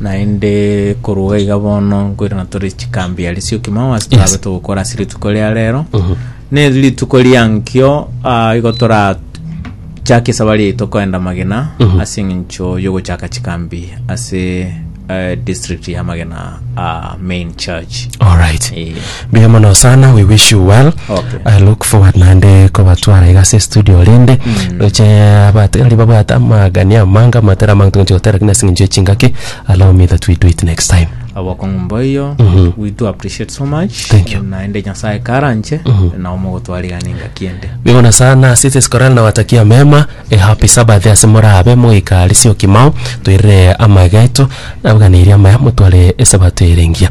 Naende korwa iga bono nkoirana tore chikambi aria sio kimo ase torabe togokora ase rituko ria rero ne rituko riankio ah, igo torachake esabari yaito koenda magena ase eng'encho yogochaka chikambi ase eh, district ya magena ah, main church alright Eh. Mbuya mono sana we wish you well Okay. I look forward naende kobatwara iga ase studio rende roche abategereri babwate amagani amange amatera amange togochi gotera lakini ase eng'encho y'echingaki allow me that we do it next time abokong'u mboiyo Mhm. we do appreciate so much Thank you. naende nyasaye karanche Mhm. nao mogotwarigana engaki ende bigona sana sisi skorali na watakia mema a happy sabbath ase morabe moikarisio kimao toirire amageto nabuganeirie amaya motware esabato erengia